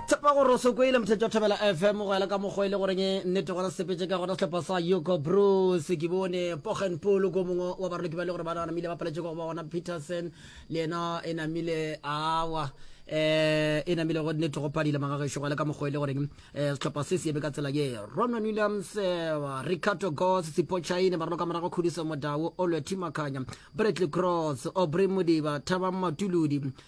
tshepa gore o sokoile mothetši wa thobela fm go ela ka mokgwa e le goreng e nnete gona sepetse ka gona setlhopha sa yuko bruce ke bone pogen polo ko mongwe wa baroloki ba le gore ba namile ba paletše go ba gona peterson le yena e namile awa um eh, e namile go nnete go padile magagešo go ela ka mokgwa e le goreng um eh, setlhopha se se ebe ka tsela ye ronon williams eh, ricardo gos sipochaine baroloka morago khudiso modao olwe timakanya bradley cross obrey modiba thabang matuludi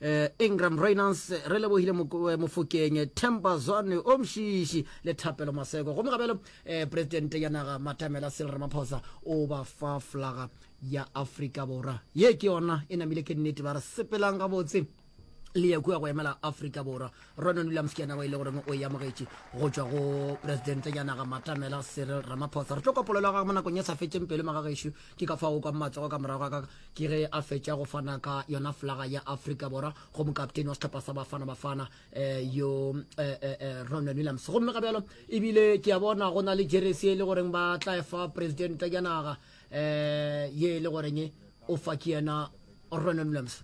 eh, Ingram Reynolds re lebogile eh, mofokeng eh, Temba Zwane o mšiši le Thapelo Maseko gomme gabelo eh, presidente ya naga Matamela Cyril Ramaphosa o ba fa flaga ya Afrika Borwa ye ke yona e namile ke nnete ba re sepelang gabotse le ya kua go emela Afrika Borwa Ronan Williams ke yena wa ile goreng o e amogetše go tšwa go presidente ya naga Matamela Cyril Ramaphosa re tlo kopolelo ga mo nakong e sa fetseng pelo magagešo Ke ka fao kwa matsogo ka morago ga ka ke ge a fetša go fana ka yona flaga ya Afrika Borwa go mokapteni wa sehlopha sa Bafana Bafana eh, yo eh, eh, eh, Ronwen Williams. Gomme ga bjalo ebile ke a bona go na le jeresi e le goreng ba tla e fa presidente ya naga eh, ye e le goreng o fa ke yena Ronwen Williams.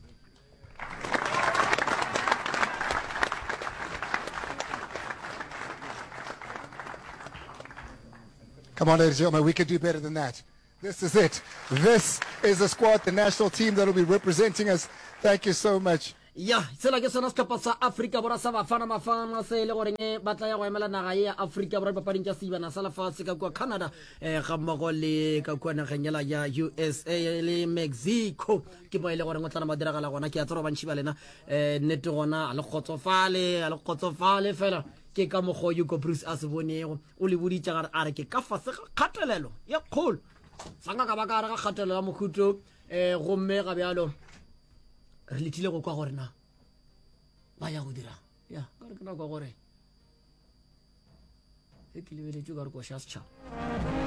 Come on, ladies and gentlemen, we can do better than that. This is it. This is the squad, the national team that will be representing us. Thank you so much. ya tsela ke sona setlhopha sa aforika borwa sa bafana mafana se e le goreng eh, ba tlaya go emela naga e ya aforika borwa dipapading tša seibana sa lefatshe ka kua canada um eh, ga mmogo le ka kua nageng ela ya usa le mexico ke mo e le goreng o tla mo diragala gona ke a tsere bantšhi ba lena um nnete gona a le kgotsofale a le kgotsofale fela ke ka mokgwa o yuko bruce a se bonego o le boditše gare a re ke ka fase ga kgatelelo ye kgolo sanga ka ba ka gare ga kgatelelo ya mokhuto um eh, gomme ga bjalo re lethile go kwa gore na ba ya go dirang ya ka re ke nako gore e ke lebeletse ka re koša setšhaba